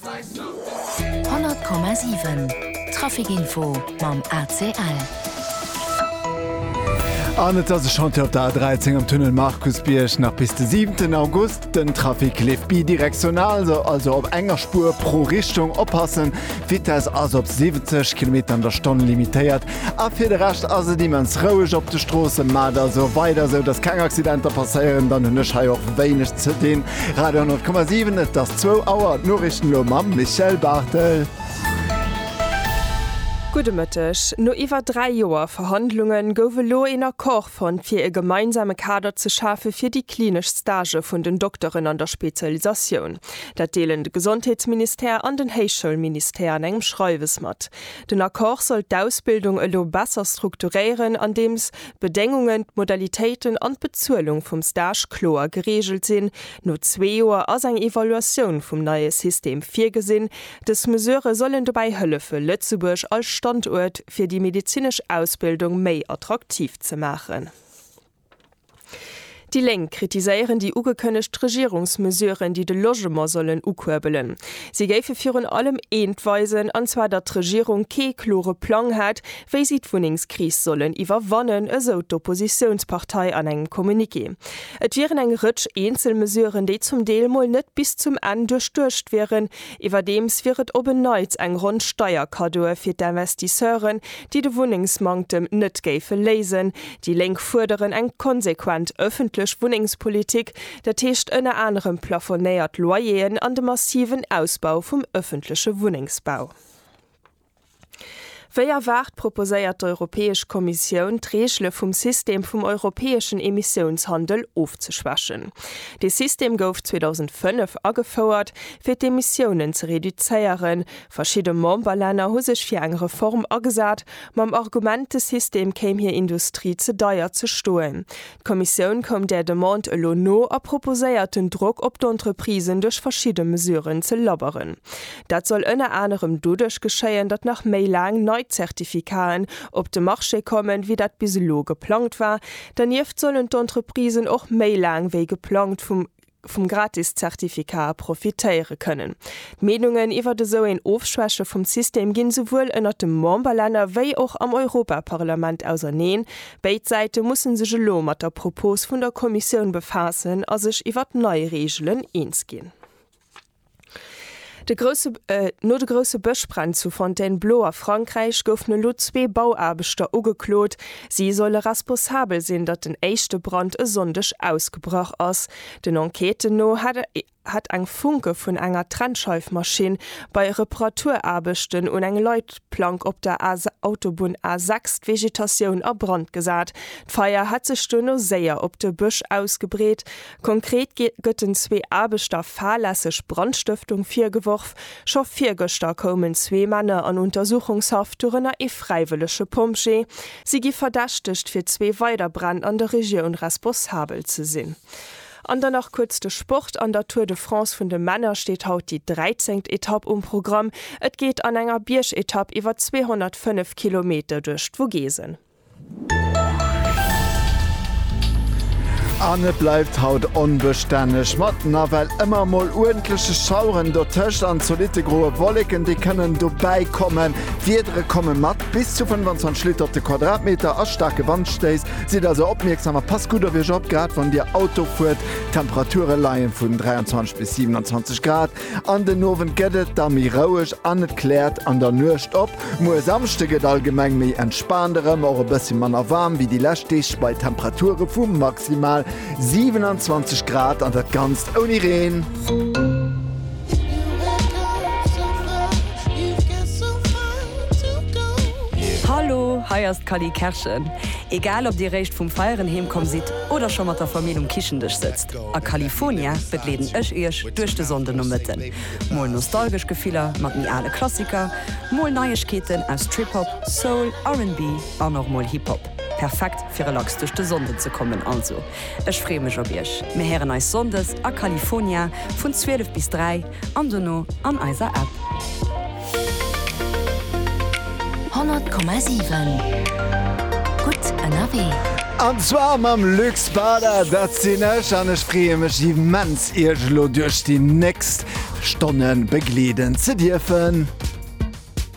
100 Komma 7 Trafic Info mam ACL. An et ass e Chantier op der A13 am Tunnel Markusbierg. Nach bis de 7 August. Den Trafic leeft bidirektional, also op enger Spuer pro Richtung. Oppassen, d'Vitess ass op 70 Kilometer an der Stonn limitéiert. A fir de Rescht ass et immens roueg op de Stroossen, ma et ass och weider esou, dass keng Accidenter passéieren. Dann hunn ech hei och wéineg ze dinn. Radio 100,7, et ass zwou Auer. D'Noriichten elo mam Michèle Barthel. Gudde Mëtteg. No iwwer dräi Joer Verhandlunge gouf elo een Accord fonnt, fir e gemeinsame Kader ze schafe fir déi klinesch Stagë vun den Dokteren an der Spezialisatioun. Dat deelen de Gesondheetsministère an den Héichschoulministère an engem Schreiwes mat. Den Accord soll d'Ausbildung elo besser strukturéieren, andeems d'Bedéngungen, d'Modalitéiten an d'Bezuelung vum Stage kloer gereegelt sinn. No zwee Joer ass eng Evaluatioun vum neie System virgesinn. Dës Mesurë sollen dobäi hëllefe Lëtzebuerg als Standuert fir déi medezinesch Ausbildung méi attraktiv ze maachen. Déi Lénk kritiséieren déi ugekënnegt Regierungsmesuren, déi de Logement sollen ukuerbelen. Si géife virun allem eent weisen, an zwar datt d'Regierung kee klore Plang hätt, wéi si d'Wunnengskris sollen iwwerwannen, esou d'Oppositiounspartei an engem Communiqué. Et wieren eng Rëtsch eenzel Mesuren, déi zum Deel mol net bis zum Enn duerchduecht wieren, Iwwerdeems wier et op en Neits eng Ronn Steierkaddoe fir d'Investisseuren, déi de Wunnengsmanktem net géife léisen. Déi Lénk fuerderen eng konsequent ëffentlech Wunnengspolitik, dat heescht ënner anerem plafonéiert Loyeren an de massiven Ausbau vum ëffentleche Wunnengsbau. Wéi erwaart proposéiert d'Europäesch Kommissioun, d'Reegele vum System vum europäeschen Emissiounshandel ofzeschwächen. Dee System gouf 2005 agefouert, fir d'Emissiounen ze reduzéieren. Verschidde Memberlänner hu sech fir eng Reform agesat, mam Argument, de System kéim hir Industrie ze deier ze stoen. D'Kommissioun koum där Demande elo no a proposéiert den Drock op d'Entreprisen duerch verschidde Mesuren ze lobberen. Dat soll ënner anerem doduerch geschéien, datt nach méi laang nei Zertifikaten op de Marché kommen, wéi dat bis elo geplangt war. Dernieft sollen d'Entreprisen och méi laang wéi geplangt vum vum Gratis-Zertifikat profitéiere kënnen. D'Meenungen iwwert esou een Ofschwäche vum System ginn esouwuel ënnert de Memberlänner wéi och am Europaparlament auserneen. Béid Säite mussen sech elo mat der Propos vun der Kommissioun befaassen a sech iwwert nei Reegelen eens ginn. No de grousse Bëschbränn zu Fontainebleau a Frankräich goufen elo zwee Bauaarbechter ugeklot. Si solle responsabel sinn, datt den éischte Brand e Sonndeg ausgebrach ass. Den Enquêten no hätt eng Funke vun enger Trennscheifmaschinn bei Reparaturaarbechten un eng Leitplank op der Autobunn A6 d'Vegetatioun a Brand gesat. D'Feier hätt sech duerno séier op de Bësch ausgebreet. Konkret gëtt den zwee Aarbechter fahrlässeg Brandstëftung virgeworf. Scho virgëschter koumen zwee Männer an Untersuchungshaft, dorënner ee fräiwëllege Pompjee. Si gi verdächtegt, fir zwee weider Bränn an der Regioun responsabel ze sinn. An dann nach kuerz de Sport, An der Tour de France vun de Männer steet haut déi dräizengt Etapp um Programm. Et geet an enger Biergetapp iwwer 205 Kilometer duerch d'Vogesen. An et bleift haut onbestänneg, mat nawell ëmmer mol uerdentleche Schaueren dotëscht an zolitte groe Wolleken, déi kënnen dobäikommen. D'Wiedere komme mat bis zu 25 Liter op de Quadratmeter a staarke Wandstéiss. Sidd also opmierksam a passt gutt op Iech op, grad wann Dir Auto fuert. D'Temperature leie vun 23 bis 27 Grad. An den Owend gëtt et da méi roueg an et kläert an der Nuecht op. Muer Samschde gëtt allgemeng méi entspaant erëm, och e bëssi manner waarm wéi déi lescht Deeg bei Temperature vu maximal 27 Grad an dat Ganzt ouni Reen. Hallo, hei ass d'Cally Kerschen. Egal ob dir réischt vum Feieren heemkomm sidd oder scho mat der Famill um Kichendësch sëtzt. A California begleeden ech iech duerch de Sonndenomëtten. Mol nostalgesch Gefiller mat méi ale Klassiker, mol Neiegkeeten aus Trip-Hop, Soul, RnB an och mol Hip-Hop. Perfekt fir relax duerch de Sonnden ze kommen. Also ech freeë mech op iech. Mir héieren eis Sonndes a California vun 12 bis 3. an dono an eiser App. 100,7 gutt ënnerwee. An zwar mam Luc Spada, dat sinn ech an ech freeë mech immens iech elo duerch déi nächst Stonne begleeden ze dierfen.